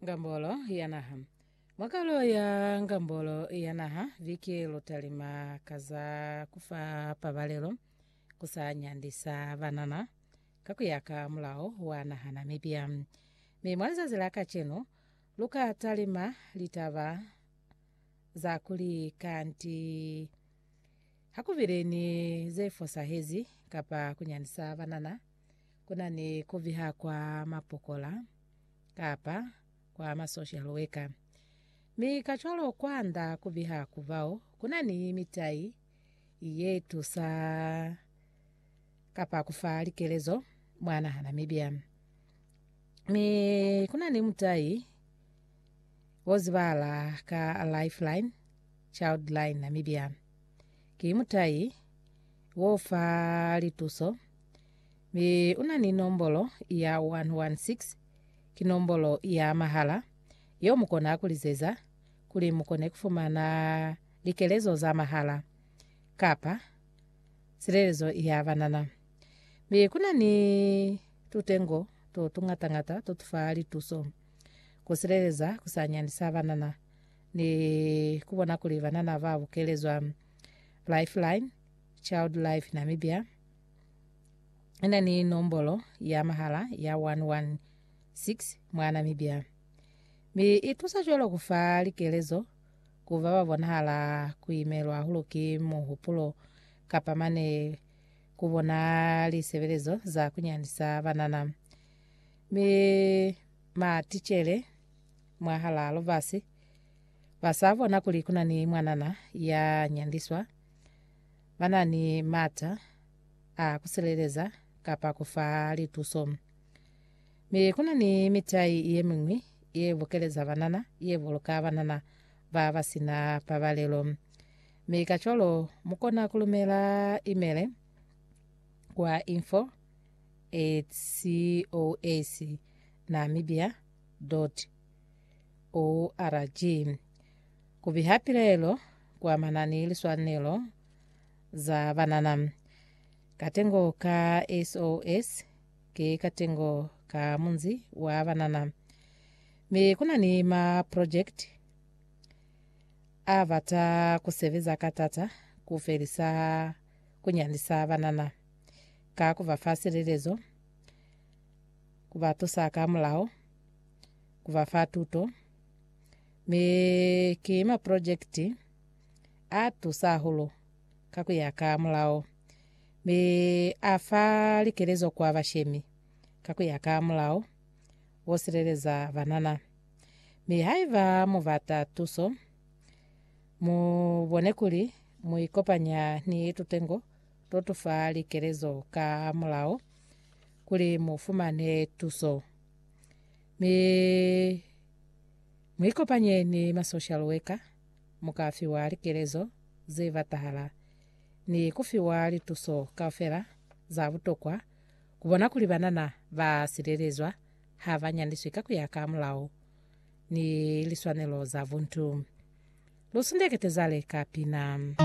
Ngambolo ya Naha. Mwa kalo ya Ngambolo ya Naha viki lutalima ka za ku fa pabalelo ku sa nyandisa banana ka ku ya ka mulao wa naha Namibia. Mi mwa lizazi la kacenu, lu ka talima litaba za kuli kanti Ha ku bile ni ze fosahezi kapa ku nyandisa banana, ku na ni ku viha kwa mapokola kapa kwa masocial worker. Mi kacwalo kwanda ku viha ku bao, ku na ni mitai ye tusa. kapa ku fa likelezo mwa naha Namibia. Mi kuna ni mutai wo zibala ka Lifeline Childline Namibia. Ki mutai wo fa lituso mi una ni nombolo ya 116 ki nombolo ya mahala yo mu kona ku lizeza kuli mu kone ku fumana likelezo za mahala kapa silelezo ya banana, mi ku na ni tutengo to tungata-ngata to tu fa lituso ku sileleza ku sa nyandisa banana ni ku bona kuli banana ba bukelezwa. Lifeline Child Life Namibia i na ni nombolo ya mahala ya 116 mwa Namibia, mi i tusa cwalo ku fa likelezo ku ba ba bonahala ku imelwa hahulu ki muhupulo kapa mane ku bona lisebelezo za ku nyanisa banana. Mi maticele mwahalaa lubasi ba sa bona kuli ku na ni mwanana ya nyandiswa, ba na ni m'ata a ku sileleza kapa ku fa lituso. Mi kuna ni mitai yemiñwi ye bukeleza banana, ye buluka banana ba ba sina pabalelo. Mi kacwalo mukona kulumela imele kwa info at cos namibia org kubiha pilelo kuamana ni liswanelo za banana katengo ka SOS Ki katengo ka munzi wa banana. Mi kuna ni ma project a bata ku sebeza ka tata ku felisa ku nyandisa banana ka ku ba fa silelezo, ku ba tusa ka mulao, ku ba fa tuto. Mi ki ma project a tusa hahulu ka ku ya ka mulao. Mi a fa likelezo kwa bashemi ka ku ya ka mulao wo sileleza banana. Mi haiba mu bata tuso, mu bone kuli mu ikopanya ni tutengo to tu fa likelezo ka mulao kuli mu fumane tuso. Mi mu ikopanye ni ma social worker, mu ka fiwa likelezo ze batahala. ni ku fiwa lituso kaufela za butokwa ku bona kuli banana ba silelezwa ha ba nyandiswi ka ku ya ka mulao ni liswanelo za buntu. Lu sundekete zale ka pina.